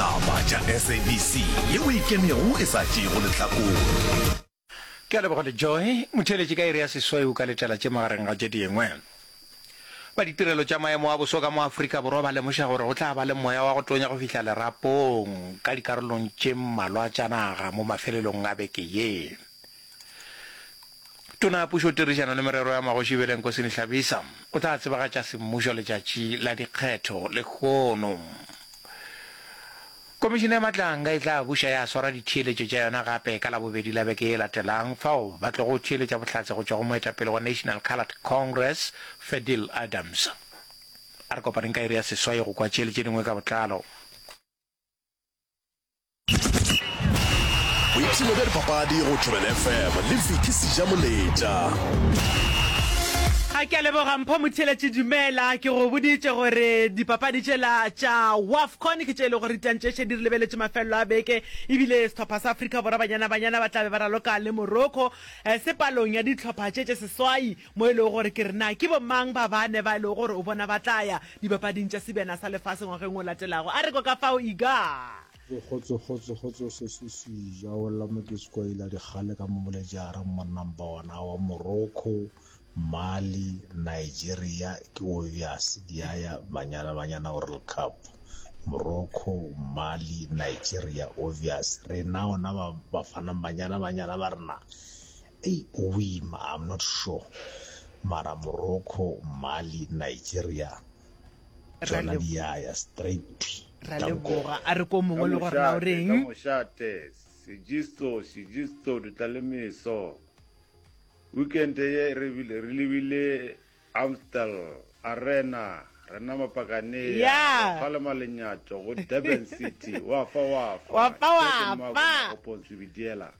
Taba tša SABC ye o ikemego e sa tšeego lehlakore. Ke a leboga Lejoe Motheeletši ka iri ya sesweu ka letela tše magareng ga tše dingwe. Ba ditirelo tša maemo a boso ka mo Afrika Borwa ba lemoša gore go tla ba le moya wa go tonya go fihla lerapong ka dikarolong tše mmalwa tša naga mo mafelelong a beke ye. Tona ya Pušo, Tirišano le Merero ya Magoši Beleng Kosini Hlabisa o tla tsebagatša semmušo letšatši la dikgetho lehono. Komišene ya Matlanga e tla buša ya swara ditheeletšo tša yona gape ka Labobedi la beke e latelang fao ba tlogo theeletša bohlatse go tšwa go moetapele wa National Coloured Congress, Fadil Adams. A re kopaneng ka iri ya seswai go kwa tše le tše dingwe ka botlalo. boipshino bja dipapadi go tšhobele fm le fiki seja moletša a ke a leboga mpho motheletše dumela ke go boditše gore dipapadi tšela tša wafcon ke tše e le gore ditantšeše di re lebeletše mafelelo a beke ebile setlhopha sa afrika borwa banyana banyana ba tlabe ba raloka le morocco eh, sepalong ya ditlhopha tše tše seswai mo e lego gore ke re na ke bomang ba bane ba e lego gore o bona ba tla ya Dipapading tša Sebjana sa Lefase ngwageng o latelago. A re kwa ka fao Iga. Ee, kgotso, kgotso, kgotso, Seswi Sija o lla Mokeskwaila dikgale ka mo Molejaareng, Monnambawana wa Morocco, Mali, Nigeria, ke o bjase diaya Banyana Banyana World Cup, Morocco, Mali, Nigeria, o bjase. Rena ona ba Bafanang Banyana Banyana ba rena Ei o ima, I'm not sure. Mara Morocco, Mali, Nigeria, tšona di ya ya straight twi. ra Tanko. leboga a re ko mongwe le gore na o Kamošate, reng kamošate, sejisto, sejisto, ditlalemeso. Weekend ye re bile- re lebile Amstel Arena, re nama Pakanea, Ya. re kgalema lenyatšo go Durban City, wa fa wa fa. Wa fa wa Jack and Mark fa. Magopontshwi Bidiela.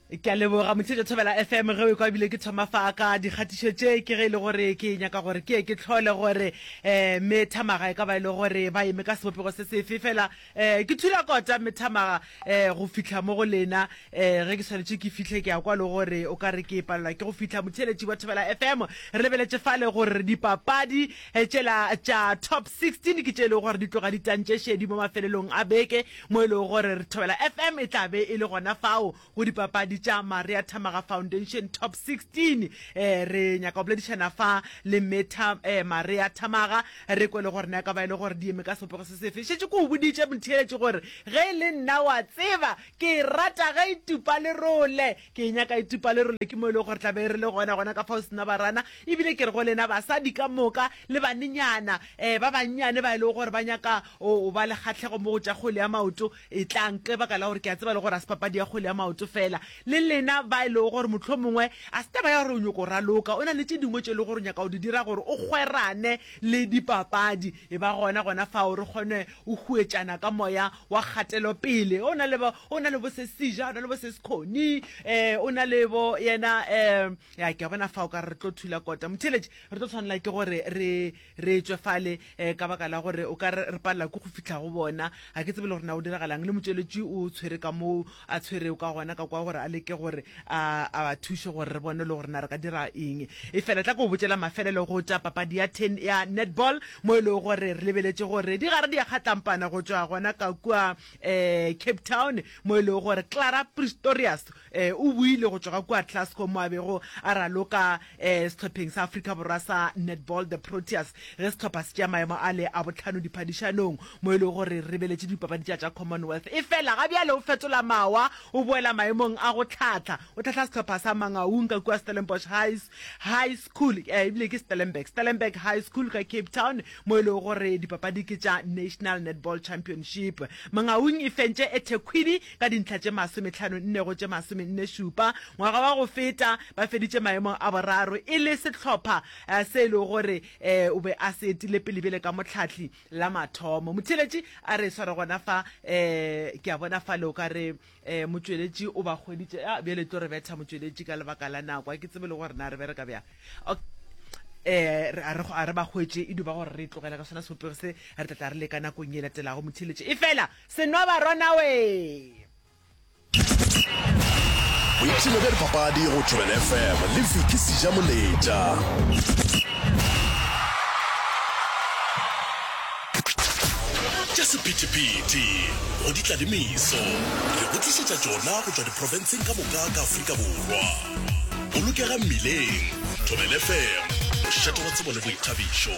ke a leboga motsheetso thobela fm ge o kwa ebile ke thoma fa ka dikgatišo tše ke ge e le gore ke nyaka gore ke ye ke tlhole gore um mme thamaga e ka ba e le gore ba eme ka sebopego se sefe fela um ke thula kota mme thamaga um go fitlha mo go lena um ge ke tshwanetse ke fitlhe ke ya kwa le gore o ka re ke palelwa ke go fitlha motheeletši wa thobela fm re lebeletše fale gore dipapadi tšela tša top 16 ke tše e lego gore di tloga ditantše šedi mo mafelelong a beke mo e lego gore re Thobela FM e tla be e le gona fao go dipapadi tša Maria Thamaga Foundation Top 16. Eh, re nyaka go boledišana fa le Mme Tha, eh, Maria Thamaga, re kwe le gore na e ka ba e le gore di eme ka sebopego se sefe. Šetše ke o boditše motheeletši gore ge e le nna wa tseba ke e rata ge e tupa lerole, ke e nyaka e tupa lerole, ke mo e lego gore tla be re le gona gona ka fao sena barana. Ebile ke re go lena basadi ka moka le banenyana, eh, ba bannyane ba e lego gore ba nyaka O o ba le kgahlego mo go tša kgwele ya maoto? Etlang, ke baka la gore ke a tseba le gore ga se papadi ya kgwele ya maoto fela. Le lena ba e lego gore mohlomongwe ga se taba ya gore o nyoko raloka, o na le tše dingwe tše e lego gore o nyaka go di dira gore o kgwerane le dipapadi, e ba gona gona fao re kgone go huetšana ka moya wa kgatelopele. O na le bo, o na le bo se Sija, o na le bo se Sekhoni, um o na le bo yena, um ya ke a bona fao ka re re tlo thula kota. Motheeletši, re tlo tshwanela ke gore re, re tšwe fale um ka baka la gore o ka re re palela ke go fitlha go bona ga ke tsebe le gore na o diragalang le motšweletši o tshwere ka moo a tshwereo ka gona ka kwa gore a leke gore a a ba thuše gore re bone le gore na re ka dira eng e fela tla ko botšela mafelelo go tša papadi ya ten ya netball mo e lego gore re lebeletše gore di gare di ya kgatlampana go tšwa gona ka kua um cape town mo e lego gore clara pristorius O boile go tšwa ga kua Glasgow mo a bego a raloka sehlopheng sa Afrika Borwa sa Netball The Proteas ge sehlopha se tšea maemo a le a bohlano diphadišanong mo e lego gore re ribeletše dipapadi tša tša Commonwealth. Efela ga bjale o fetola mawa o boela maemong a go hlahla. O hlahla sehlopha sa Mangaung ka kua Stellenbosch High School, e bile ke Stellenberg, Stellenberg High School ka Cape Town mo e lego gore dipapadi ke tša National Netball Championship. Mangaung e fentše ethekwini Ka dintlha tše masome-hlano nne go tše masome-nne šupa, ngwaga wa go feta, ba feditše maemong a boraro e le sehlopha se e lego gore o be a se etile pele bjale ka mohlahli la mathomo. Motheeletši a re sware gona fa, ke a bona fale o ka re motšweletši o ba hweditše, ya bjale e tlo re betha motšweletši ka lebaka la nako, ga ke tsebe le gore na re bereka bjang, ok. A re ba hwetše e duba gore re e tlogele ka sona sebopego se, re tla tla re leka nakong ye e latelago. Motheeletši, Efela Senwabarwanawe! Boipshino bja dipapadi go Thobela FM le Vicky Sejamoletša. Tša sephethephethe go ditlalemiso re go tlišetša tšona go tšwa diprofenseng ka moka ka Afrika Borwa. Bolokega mmileng, Thobela FM, mošate wa tsebo le boithabišo.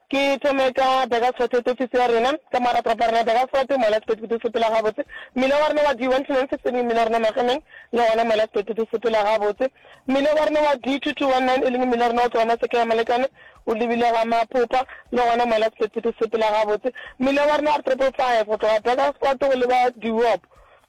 Ke thome ka Bekasote, topisi ya rena. Ka morago toropo ya rena Bekasote, Moelasiphetho di sepela gabotse. Mmila wa rena wa D 129 e leng mmila wa rena Magemeng, le gona Moelasiphetho di sepela gabotse. Mmila wa rena wa D 2219 e leng mmila wa rena o tloga Maseke ya Molekane o lebile ga Mapopa, le gona Moelasiphetho di sepela gabotse. Mmila wa rena R 555 go tloga Bekasote go leba Diop.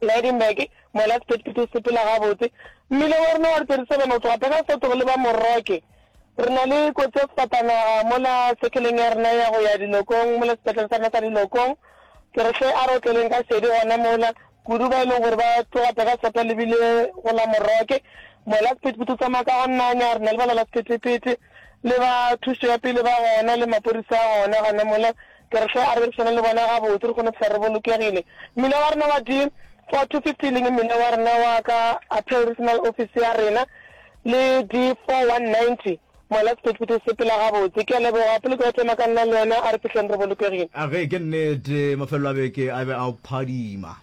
Lydenburg, mola sephetephete o sepela gabotse. Mmila wa rena wa re 37 go tloga pheka sefatogo go leba Morocke. Re na le kotsi ya sefatanaga mola sekeleng ya rena ya go ya Dilokong, mola sepetlele sa rena sa Dilokong. Ke re hle a re otleleng ka šedi gona mola, kudu ba e leng gore ba tloga pheka sefatogo ba lebile go la Morocke. Mola sephetephete o tsamaya ka go nanya, re na le balwala sephetephete le ba thušo ya pele ba gona le mapodisa a gona gona mola. Ke re hle a rerišane le bona gabotse re kgone phela re bolokegile. Mmila wa rena wa di 4 to 50 e leng mmila wa rena wa ka Appeal Regional Office ya rena le di 4 190 mola sephethephethe se pela gabotse. Ke a leboga pele ke otlema ka nna le wena a re fihleng re bolokegile. A ge ke nnete mafelelo a beke a be a phadima.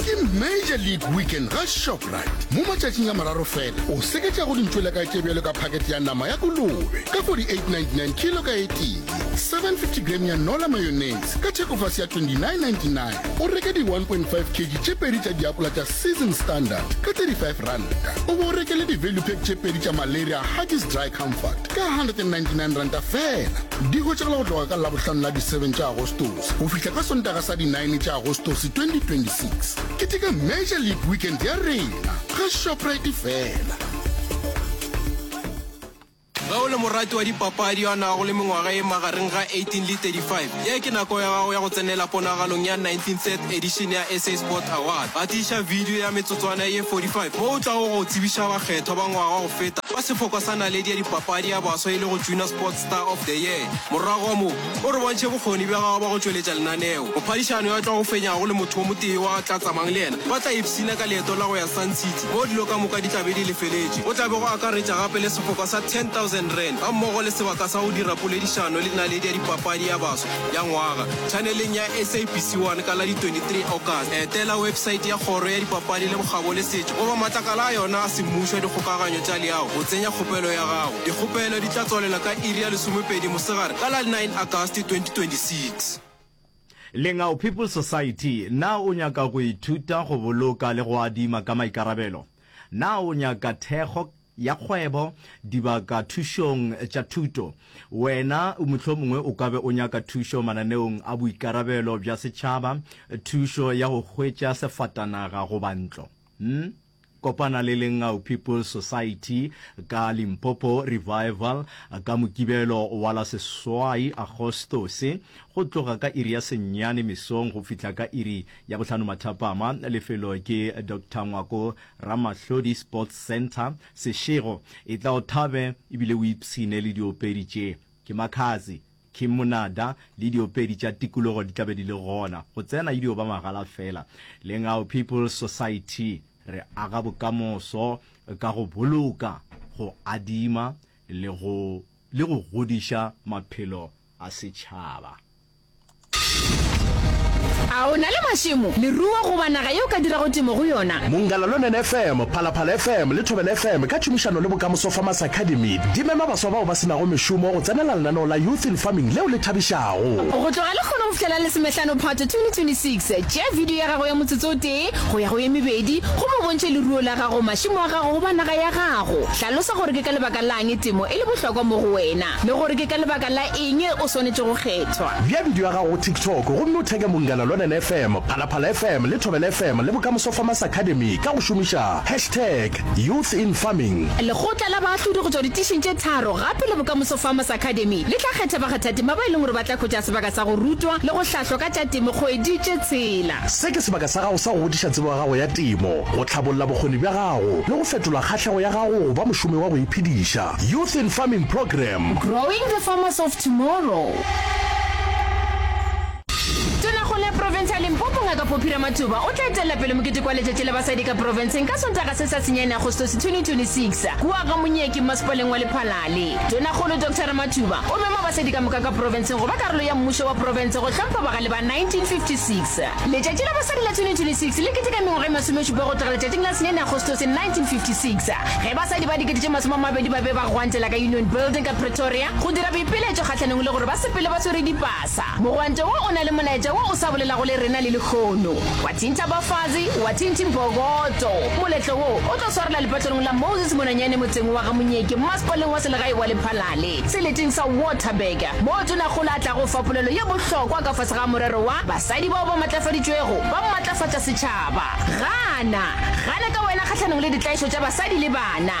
ke major league weekend ga shoprite mo matšatšing a mararo fela o seketša go dintšwela ka tše bjalo ka pakete ya nama ya kolobe ka 4899 kilo ka etee 750 gram ya nola mayonnaise ka thekofase ya 2999 o reke di 1.5 kg tše pedi tša diapola tša season standard ka 35 ranta o bo o rekele di-value pack tše pedi tša malaria huggies dry comfort ka 199 ranta fela Di hwetšagala go tloga ka Labohlano la di 7 tša Agostose go fihla ka Sontaga sa di 9 tša Agostose 2026. Keteka Major League Weekend ya rena ga Shoprite fela. Ge o le morati wa dipapadi yo a nago le mengwaga e magareng ga 18 le 35, ye ke nako ya gago ya go tsenela ponagalong ya 19th edition ya SA Sport Awards. Gatiša video ya metsotswana ye 45 mo o tlago go tsebiša bakgethwa ba ngwaga go feta fa sefokwa sa naledi ya dipapadi ya baswa e lego Junior Sports Star of the Year. Morago ga moo, o re bontšhe bokgoni bja gago bja go tšweletša lenaneo. Mophadišani yo a tlago fenyago le motho yo motee yo a tla tsamang le yena ba tla ipshina ka leeto la go ya Sun City moo dilo ka moka di tla be di lefeletšwe. Go tla be go akaretša gape le sefoka sa R10,000 gammogo le sebaka sa go dira poledišano le naledi ya dipapadi ya baswa ya ngwaga tšhaneleng ya SABC 1 ka la di 23 August. Etela wepesaete ya Kgoro ya Dipapadi le Bokgabo le Setšo goba matlakala a yona a semmušo a dikgokaganyo tša leago go tsenya kgopelo ya gago. Dikgopelo di tla tswalela ka iri ya lesomepedi mosegare ka la 9 Agasti 2026. Lengau People's Society, Na o nyaka go ithuta go boloka le go adima ka maikarabelo? Na o nyaka thekgo ya kgwebo, dibaka thušong tša thuto? Wena mohlomongwe o ka be o nyaka thušo mananeong a boikarabelo bja setšhaba, thušo ya go hwetša sefatanaga goba ntlo. Kopana le Lengau People's Society ka Limpopo Revival ka Mokibelo wa la seswai Agostose, go tloga ka iri ya senyane mesong go fihla ka iri ya bohlano mathapama. Lefelo ke Doctor Ngwako Ramahlodi Sports Centre. Sešego, etla o thabe ebile o ipshine le diopedi tše. Ke Makhadzi. Ke monada le diopedi tša tikologo di tla be di le gona, go tsena e dio ba magala fela. Lengau People's Society re aga bokamoso ka go boloka, go adima le go le go godiša maphelo a setšhaba. A o na le mašemo, leruo goba naga ye o ka dirago temo go yona? Mongalalunen FM, Phalaphala FM le Thobela FM ka tšhomišano le Bokamoso Farmers Academy di mema baswa bao ba se nago mešomo go tsenela Lenaneo la Youth in Farming leo le thabišago. Go tloga lekgona go fihlela Lesomehlano Phato 2026, tšea bidio ya gago ya motsotso o tee go ya go ye mebedi gomme o bontšhe leruo la gago, mašemo a gago goba naga ya gago. Hlalosa gore ke ka lebaka la'ng temo e le bohlokwa mo go wena le gore ke ka lebaka la eng o swanetše go kgethwa. Bea bidio ya gago go TikTok gomme o theke Mungala Lwanene FM, Phalaphala FM le Thobela FM le Bokamoso Farmers Academy ka go šomiša hashtag. Youth in Farming. Lekgotla la Baahlodi go tšwa ditišing tše tharo gape le Bokamoso Farmers Academy le tla kgetha bakgathatema ba e leng gore ba tla hwetša sebaka sa go rutwa le go hlahlwa ka tša temo kgwedi tše tshela. Se ke sebaka sa gago sa go godiša tsebo ya gago ya temo, go tlhabolla bokgoni bja gago le go fetola kgahlego ya gago go ba mošomi wa go iphediša. Youth in Farming Programme. Growing the Farmers of Tomorrow. Tonakgolo ya profense ya Limpopo Ngaka Poppy Ramathuba o tla etelela pele mokete kwa letšatši la basadi ka profenseng ka Sontaga se sa senyane Agostose 2026 kua ga Monyeki mmasepaleng wa Lephalale. Tonakgolo Doctor Ramathuba o mema basadi ka moka ka profenseng go ba karolo ya mmušo wa profense go hlompha bagale ba 1956. Letšatši la basadi la 2026 le keteka mengwaga e masomešupa go tloga letšatšing la senyane Agostose 1956 ge basadi ba dikete tše masome a mabedi ba be ba gwantela ka Union Building ka Pretoria go dira boipiletšo kgahlanong le gore ba sepele ba swere dipasa Sa. Mogwante wo o na le molaetša wo o sa bolelago le rena le lehono. Wa thintha Bafazi, wa thinthi Mpokoto. Moletlo wo o tlo swarela lepatlelong la Moses Monanyane motseng wa ga Monyeke masepaleng wa selegae wa Lephalale, seleteng sa Waterberg, moo Tonakgolo a tlago fa polelo ye bohlokwa ka fase ga morero wa Basadi bao ba matlafaditšwego ba matlafatša setšhaba. Gana! Gana ka wena kgahlanong le ditlaišo tša basadi le bana!